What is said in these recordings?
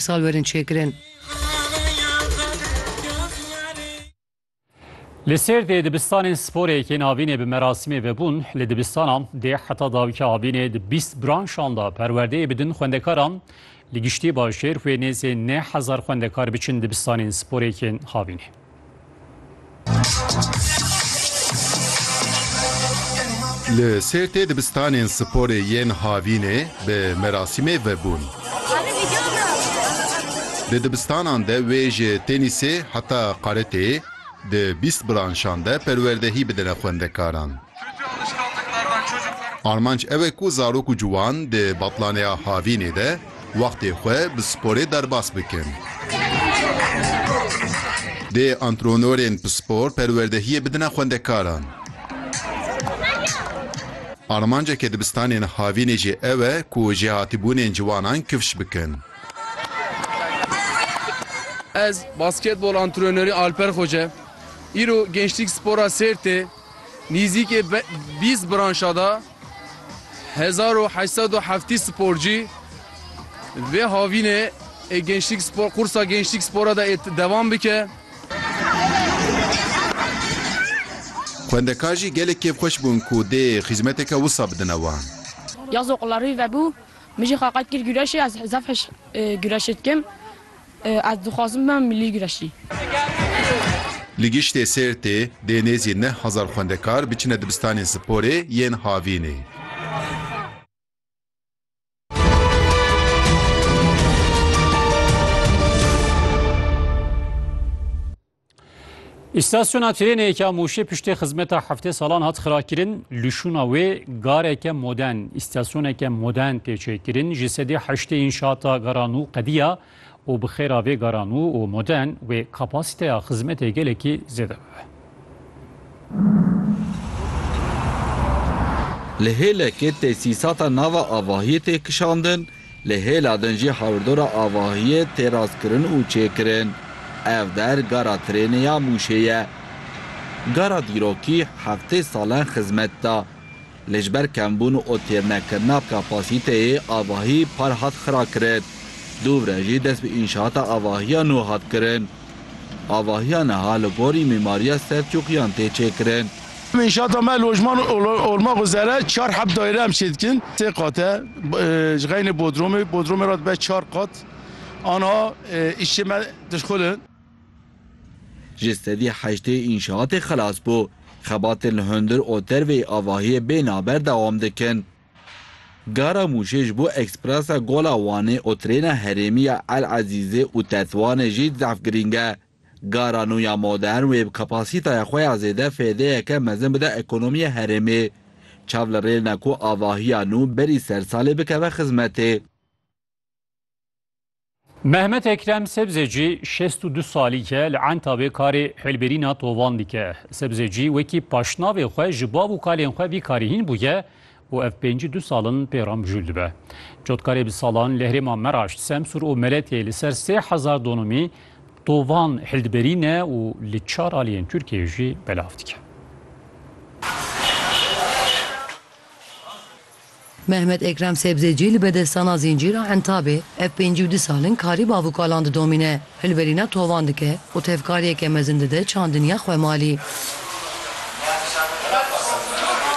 Sal werin çêkirin. Li Sêrdê dibistanên sporê yên avînê bi merasîmê vebûn. Li dibistana dê heta dawîka avînê di bîst branşan de perwerdeyê bidin xwendekaran. Li giştî bajêr wê nêzê neh hezar xwendekar biçin dibistanên sporê yên havînê. Li Sêrtê dibistanên sporê yên Havînê bi merasîmê vebûn. Di dibistanan de wê ji tenîsê heta qaretê di bîst branşan de perwerdehî bidine xwendekaran. Armanc ew e ku zarok û ciwan di Batlaneya Havînê de Wextê xwe bi sporê derbas bikin. Dê antrenorên pispor perwerdehiyê bidine xwendekaran. Armanceke dibistanên havînê jî ew e ku jêhatîbûnên ciwanan kifş bikin. Ez basketbol antrenorê Alper Xoce. Îro Gençlik Spora Sêrtê nîzîkê bîst branşa da. Hezar û heşt sed û heftî sporcî vê havînê ê Gençlik Spor qursa Gençlik Spora de ê devam bike. Xwendekar jî gelek kêfxweş bûn ku dê xîzmeteke wisa bidine wan. Ya zoqlarî vebû, min jî xaqet kir gureşê, ez zaf hişk gureşê dikim. Ez dixwazim bibim milî güreşî. Li Giştê Sêrtê dê nêzî neh hezar xwendekar biçine dibistanên sporê yên havînê. Îstasyona trênê ya Mûşê piştê xizmeta heftê salan hat xirakirin, lişûna wê gareke modern, îstasyoneke modern tê çêkirin, ji sedî heştê înşata garanû qediya û bi xêra vê garanû û modern wê kapasîteya xizmetê gelekî zêde bibe. Li hêlekê tesîsata nava avahiyê tê kişandin, Li hêla din jî hawirdora avahiyê tê rastkirin û çêkirin. Ev der gara trênê ya Mûşê ye. Gara dîrokî heftê salan xizmet da. Lê ji ber kembûn û têrnekirina kapasîteyê avahî par hat xirakirin. Dûvre jî dest bi înşaata avahiya nû hat kirin. Avahiya niha li gorî mîmariya Selçûkiyan tê çêkirin. Înşaata me lojman olma xwezere çar heb dayre em çê dikin. Sê qat e. Ji xeynê bodromê, bodromê re dibe çar qat. Aniha îşçê me dişxul in. Ji sedî heştê înşaatê xelas bû. Xebatên li hundir û derveyî avahiyê bê naber dewam dikin. Gara Mûşê ji bo ekspresa Gola Wanê û trêna herêmî ya El Ezîzê û Tetwanê jî di zehf girîng e. Gara nû ya modern wê bi kapasîtaya xwe ya zêde fêdeyeke mezin bide ekonomiya herêmê. Çav li rêl ne ku avahiya nû berî ser salê bikeve xizmetê. Mehmet Ekrem Sebzeci şêst û du salî ye li Entabê karê hêlbirîna tovan dike. Sebzeci wekî paşnavê xwe ji bav û kalên xwe vî karî hîn bûye û ev pêncî du sal in pê re mijûl dibe. Cotkarê bi salan li herêma Meraş, Semsûr û Meletê li ser sê hezar donomî tovan hildibirîne û li çar aliyên Tirkiyeyê jî belav dike. Mehmet Ekrem Sebzecî li bedestana Zîncîra Entabê ev pêncî û du sal in karî bavûkalan didomîne, hilberîna tovan dike û tevkariyeke mezin dide çandiniya xwe malî.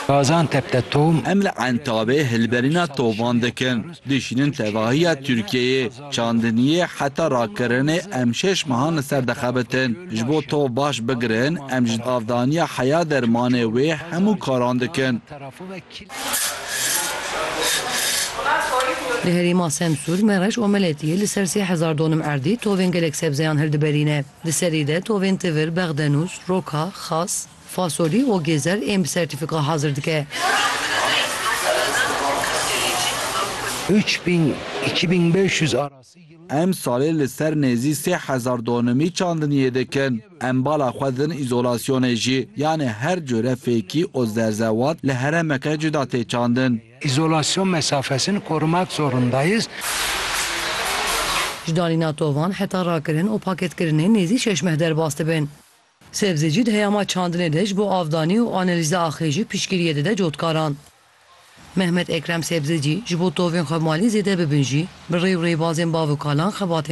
Gaziantep de tom. Em li Entabê hilberîna tovan dikin, dişînin tevahiya Tirkiyeyê. Çandiniyê heta rakirinê em şeş mehan li ser dixebitin. Ji bo tov baş bigirin em ji avdaniya heya dermanê wê hemû karan dikin. Li herêma Semsûr, Mereş û Meletiyê li ser sê hezar donim erdî tovên gelek sebzeyan hildiberîne. Di serî de tovên tivir, bexdenûs, roka, xas, fasolî û gêzer ên bi sertîfika hazir dike. Em salê li ser nêzî sê hezar donemî çandiniyê dikin. Em bala xwe din îzolasyonê jî, yanê her cure fêkî û zerzewat li heremeke cuda tê çandin. Îzolasyon mesafesini korumak zorunda yê. Ji danîna tovan heta rakirin û paketkirinê nêzî şeş meh derbas dibin. Sebzê jî di heyama çandinê de ji bo avdanî û analîza axê jî piştgiriyê dide cotkaran. Mehmet Ekrem Sebzecî ji bo tovên xwe malî zêde bibin jî bi rê û rêbazên bav û kalan xebatên